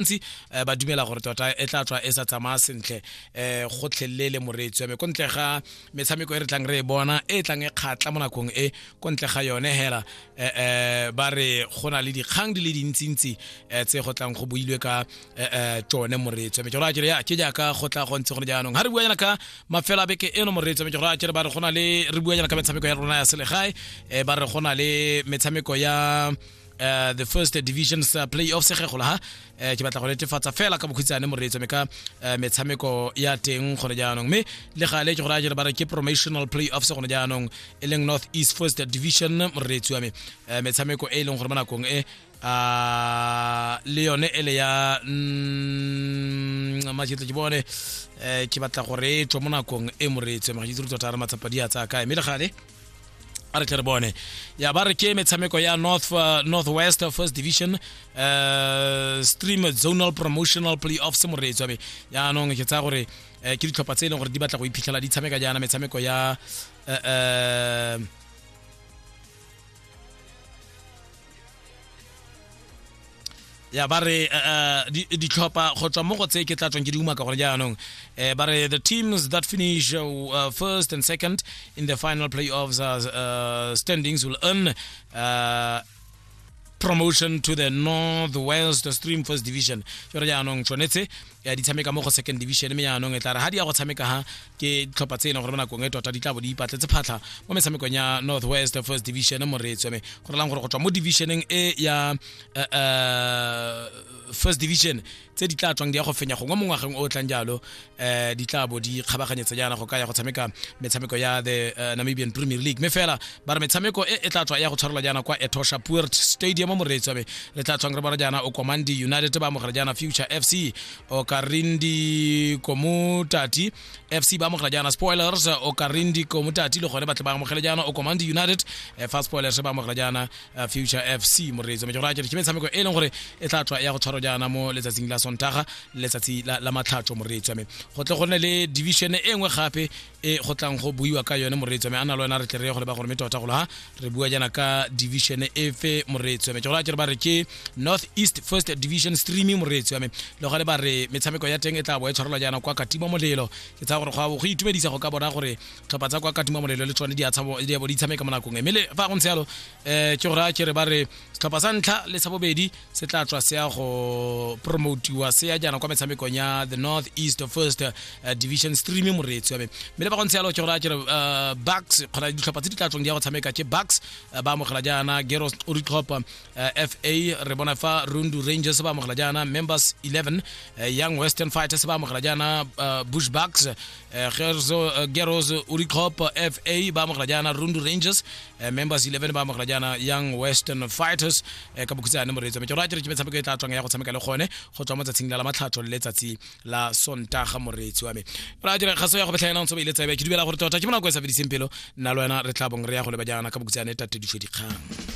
bantsi um ba dumela gore tota e tla tswa e sa tsamaya sentle um go tlhelele moreetsi wa me ko ntle ga metshameko e re tlang re e bona e tlang e kgatla mo nakong e ko ntle ga yone hela um ba re go na le dikgang di le dintsintsi um tse go tlang go builwe ka um tsone moreetsi wa me ke gore ya ke jaaka go tla go ntse gone jaanong ga re bua jana ka mafela beke eno moreetsi wa me ke gore a kere ba re go na le re bua jana ka metshameko ya rona ya selegae um ba re go na le metshameko ya uh, the first divisions uh, playoff segegolo ha uh, ke batla go netefatsa fela ka bokhutshane moreetso me ka uh, metshameko ya teng gone jaanong mme le gale ke go raya jere ba re ke promotional playoff se gone jaanong e leng north east first division moreetsi wa me uh, metshameko e e leng gore mo nakong e uh, le yone ele ya mm, majetle ke bone uh, ke batla gore e tswa mo nakong e moreetsi ma ke itse re tota re matsapa di a tsaya kae mme le gale a re tle re bone ya ba re ke metshameko ya north uh, northwest first division uh, stream zonal promotional playoffs moreetswa be yaanong ke tsaya gore uh, ke ditlhopha tse e leng gore di batla go iphitlhela di tshameka jaana metshameko ya uh, uh, ya ba re uh, ditlhopha go tswa mo go tse ke tla tswang ke di umaka gore jaanong um ba re the teams that finish uh, uh, first and second in the final playoffs uh, uh, standings will earn uh, promotion to the northwest stream first division jore jaanong tshwanetse ya di tshameka mo go second division mme yaanong e tla re ga di ya go tshameka ha ke ditlhopha tse e leng gore mo nakong e tota di tla bo di ipatletse phatlha mo metshamekong ya north west first division moreetswe mme go relang gore go tswa mo divisioneng e ya eh, eh, first division tse di tla tswang di ya go fenya gongwe mo ngwageng o o tlang jalo um di tla bo di kgabaganyetsa jaana go ka ya go tshameka metshameko ya the eh, namibian premier league mme fela ba re metshameko e e tla tswa ya go tshwarelwa jaana kwa etosha puert stadium moreetsi wabe le tla tswang re bona jaana o komandi united ba amogela jaana future fc o karindi komutati fc ba amogela jaana spoilers o karindi komutati le gone batle ba amogele jaana o komandi united eh, fa spoilers ba amogela jaana eh, future fc moreetsi wabe ke gore a kere ke metshameko e leng gore e tla tswa ya go tshwarwa jaana mo letsatsing la sontaga letsatsi la, la matlhatso moreetsi wame go tle go nne le division e nngwe gape e go tlang go buiwa ka yone moreetso me a na le wena re tle re ye go leba gore me tota golo ha re bua jana ka division e fe moreetso me ke go tlaa ba re ke north east first division streaming moreetso me le gale ba re metshameko ya teng e tla bo e tshwarelwa jana kwa katima molelo ke tsaya gore go go itumedisa go ka bona gore tlhopha tsa kwa katima molelo le tsone di a tshabo di a bo di tshameka mo nakong e me le fa go ntse yalo eh ke go raya ke re ba re tlhopha sa ntlha le sa bobedi se tla tswa se ya go promotiwa se ya jaana kwa metshamekong ya the north east first uh, division stream moreetsi wa me mme le ba gontse yalo ke gore a kere uh, bucks kgona ditlhopha tse di tla tswang di ya go tshameka ke bucks uh, ba amogela jaana geros o ditlhopha uh, fa re bona fa rundu rangers ba amogela jaana members 11 uh, young western fighters ba amogela jaana uh, bush bucks eh, Gerzo, eh, Geros Uricop FA ba amogela jaana Rundu Rangers eh, Members 11 ba amogela jaana Young Western Fighters eh, ka bokhutsane moreetso metsoro a tšeretse metshameko e tla tswang ya go tshameka le gone go tswa mo tsatsing la la matlhatso le letsatsi la sontaga moreetsi wa me ra dira kgaso ya go betlha yena ntse ba ile tsebe ke dumela gore tota ke monako e sa fediseng pelo nna le wena re tla bong re ya go leba jaana ka bokhutsane tate difo dikgang